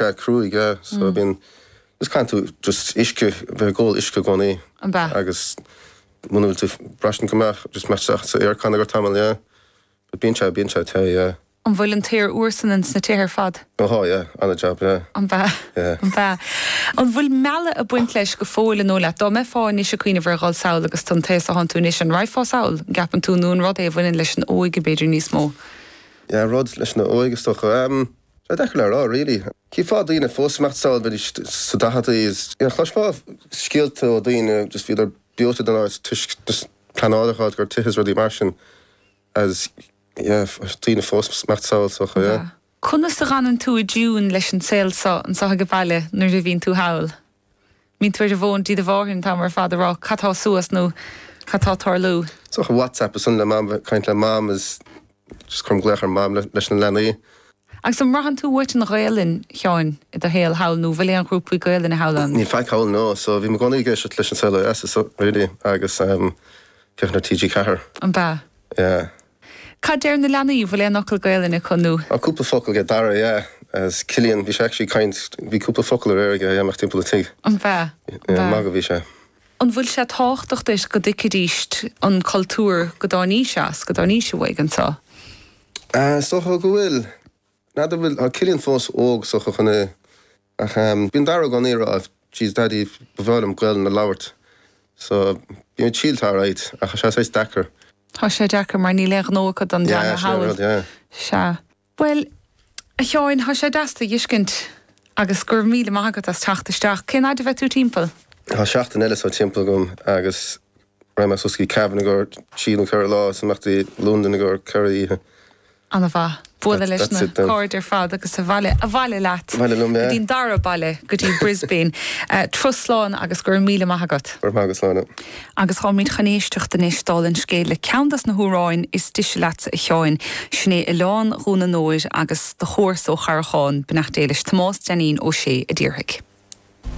Bear cruaidh, yeah, so I mean, just can't do, just uisce, bheith ag ól uisce i gcónaí. An b'ea? Agus muna bhfuil tú braistint go maith, just imeacht isteach sa aircon agat tamall, yeah. But bíonn sé, bíonn sé te, yeah. An bhfuil an t-aer úr san in sna tithe ar fad? Ó tá, yeah, gan dabht, yeah. An b'ea? Yeah. An b'ea? An bhfuil mealladh ag baint leis go fóill an dóigh leat? Dá mbeifeá anois ag cuimhneamh ar dhul sall agus tú an t-aos athánn tú anois, an raghfá sall? An gceapann tú nó an rud é a bhaineann leis an óige b'fhéidir níos mó? Yeah, rud leis an óige is dócha. Ehm. Tá deacair le rá really. Chífeá daoine fós ag imeacht sall bheidís sa daicheadaí is you know chloisfeá scéalta ó daoine just bhíodar breoite den áit toisc just pleanáil a dh'fháil i gcomhair tithe is rudaí mar sin is yeah daoine fós ag imeacht sall is dócha yeah. Conas a dh'fhanann tú i dtiúin leis an saol so anseo aige baile nuair a bhíonn tú thall? Bíonn tú ar an bhfón di de bharr an t-am ar fad a rá cad tá suas nó cad tá tarlú. Is dócha WhatsApp ansan le mam, caint le mam is just cuirim glaoch ar mam leis na leanaí. Agus an mbraitheann tú uait an Ghaelainn, Sheáin, i do shaol thall nó bhfuil aon ghrúpaí Gaelainne thall ann? Níl faic thall, no, so bím i gcónaí ag éisteacht leis an Saol Ó Dheas is really agus féachaint ar TG4. An b'ea? Yeah. Cad deir na leanaí? Bhfuil aon fhocal Gaelainne acu nó? Ah cúpla focal aige Dara, yeah, is Cillian, bhí sé actually caint, bhí cúpla focal aréir aige ag imeacht timpeall a' tigh. An b'ea? Yeah, magadh a bhí sé. An bhfuil sé tábhachtach duit go dtuigfidís an cultúr, go dtáinís as, go dtáinís uaidh anseo? Ah, is dócha go bhfuil. N'fheadar bhfuil, tá Cillian fós óg, is dócha, chun a. Ach bíonn Dara i gcónaí ag rá, Jeez Daidí, ba bhreá liom Gaolainn a labhairt, so bím ag triailt alright, ach tá sé saghas deacair. Tá sé deacair mar níl aon ghnó acu don dteanga thall. Yeah, sin é an rud, yeah. Sea. Bhuel, a Sheáin, tá sé deas tú a dh'fhiscint, agus go raibh míle maith agat as teacht isteach. Cén fhaid a bheidh tú timpeall? Tá seachtain eile so timpeall agam, agus. Raghad suas go dtí Cavan i gcomhair trí nó ceithre lá, is imeacht go Londain i gcomhair ceithre oíche. Ana mhaith. Bualadh leis na cairde ar fad agus abhaile, abhaile leat go dtí'n dara baile, go dtí Brisbane. Turas slán agus go raibh míle maith agat. Go raibh maith agat, Sláine. Agus táimid chun éisteacht anois, dála an scéil, le ceann dos na hamhráin is dise leatsa, a Sheáin. Sin é Oileán Dhún an Óir agus do chomharsa ó Charrachán, Beannacht Dé leis, Tomás Deainín Ó Sé a déarfaidh.